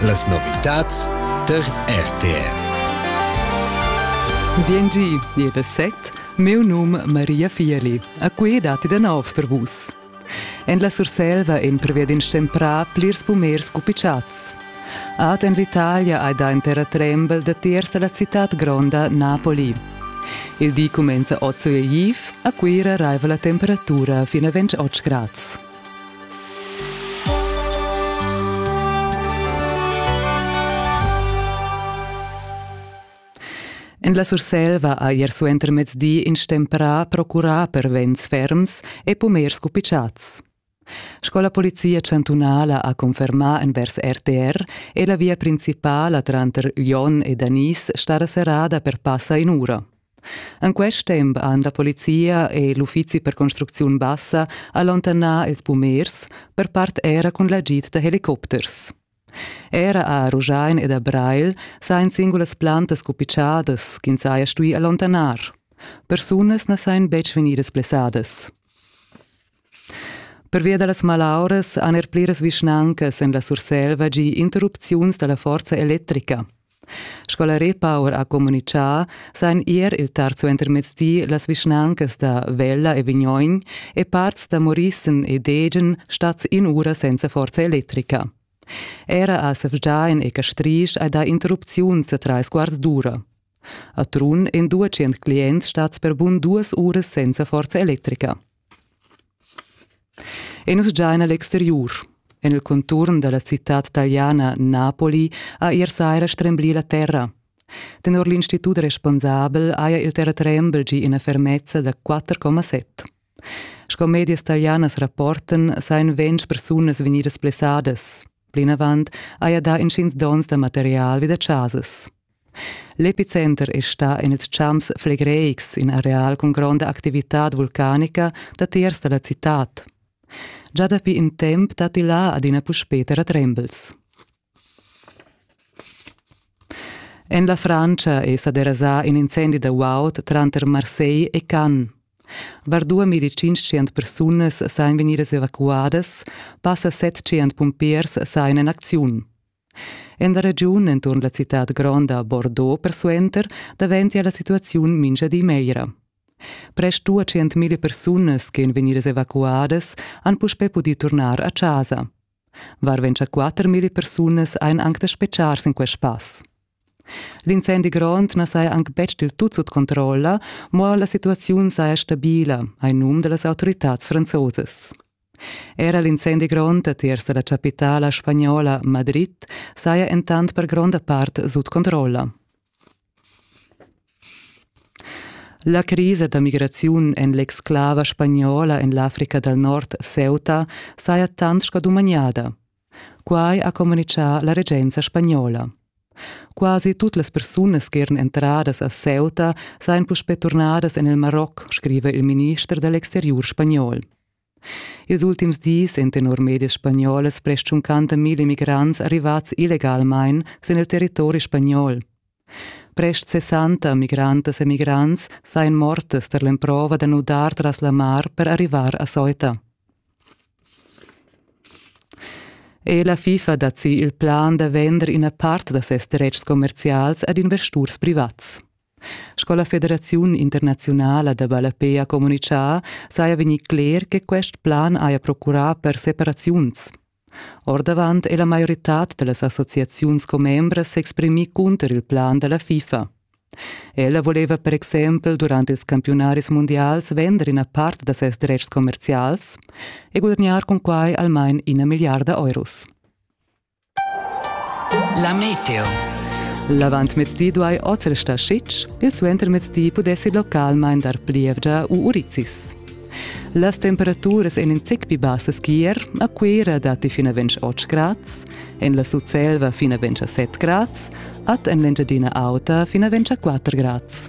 Las novitads tar RTR. BNG è da set, meu num Maria Fieli, a cui datti da nov per vus. En la Surselva en prevedin stemprà plirs pumers cupicciats. Ad en l'Italia hai da in terra trembel da tiers alla città gronda Napoli. Il di cumenza 8 Uhr a Cuira raiva la temperatura fino a 28 grads. En la Surselva ha ier suentermezdi in stemprà procurà per vents ferms e pumers cupitschats. Sco la polizia chantunala ha confermà envers RTR è la via principala tranter Lyon e Danis stada serrada per passa in ura. En quest temp han la polizia e l'uffizi per construcziun bassa allontanà ils pumers, per part era cun l'agid da helicopters. Era a Ruschein ed a Breil sajan singulas plantas cupitschadas ch'ins haja stuì allontanar. Persunas na sajan betg vegnidas blessadas. Pervia da las malauras han er pliras vischnancas en la Surselva gì interrupziuns da la forza electrica. Sco la Repower ha communitgà, sajan ier il terzo entermezdi las vischnancas da Vella e Vignoin e parts da Morissen e Degen stads in ura senza forza electrica. Era a Sefgiain e Castrisch hai dà interrupziuns da trais quarts d'ura. A Trun en 200 clients stads per bun duas uras senza forza electrica. E nus gia en l'exteriur. En il conturn da la citad taliana Napoli ha ier saira stremblì la terra. Tenor l'institut responsabel haja il terratrembel gì ina fermezza da 4,7. Sco medias talianas rapportan sajan ventg persunas vegnidas blessadas. Plinavant haja dà intgins donns da material vi da chasas. L'epicenter è stà en ils champs flegreics, in areal cun gronda activitad vulcanica datiers da la citad. Già dapi in temp datti là adina puspè terratrembels. En la Frantscha è sa derasà in incendi da guaud tranter Marseille e Cannes. Var 2500 persunas sain vegnidas evacuadas, passa 700 pumpiers sain en acziun. En la regiun enturn la citad gronda Bordeaux persuenter daventia la situaziun mintga di meglra. Prest 200.000 persunas ch'en vegnidas evacuadas han puspè pudì turnar a chasa. Varventscha 4.000 persunas ein anc da speciar sin quest pass. L'incendi grond na saja anc betg dil tut sut controlla, mo la situaziun saja stabila, hai num da las autoritads franzosas. Era l'incendi grond a tiers da la chapitala spagnola Madrid saja entant per gronda part sut controlla. La crisa da migraziun en l'exclava spagnola en l'Africa dal Nord Ceuta saja tant sco dumagnada. Quai ha communitgà la regenza spagnola. Quasi tut las persunas che eran entradas a Ceuta sajan puspè turnadas en il Maroc, scriva il minister da l'exteriur spagnol. Ils ultims dis èn tenor medias spagnolas prest tschuncanta milla migrants arrivads illegalmain sin il territori spagnol. Prest 60 migrantas e migrants sajan mortas tar l'emprova da nudar tras la mar per arrivar a Ceuta. E la FIFA dat si il plan da vender ina part da ses dretgs commerzials ad investurs privats. Sco la Federaziun internaziunala da ballapè ha communitgà, saja vegnì cler che quest plan haja procurà per separaziuns. Ordavant è la maioritad da las associaziuns commembras s'exprimì cunter il plan da la FIFA. Ella voleva per exempel durant ils campiunaris mundials vender ina part da ses dretgs commerzials e gudagnar cun quai almain ina milliarda euros. La meteo. L'avantmezdi duai oz restar sitg, il suentermezdi pudessi localmain dar plievgia u urizis. Las temperaturas èn in zic pli bassas qu'ier, a Cuira datti fin a 28 grads, en la Sutselva fin a 27 grads, ad en l'Engiadina Auta fin a 24 grads.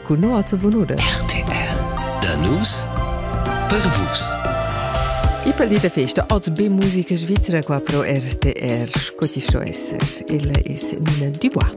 cun no a bunude. RTR Da nus per vus. I pel di de festa ot be musica svizzera qua pro RTR, co ti sto esser, il es Mine Dubois.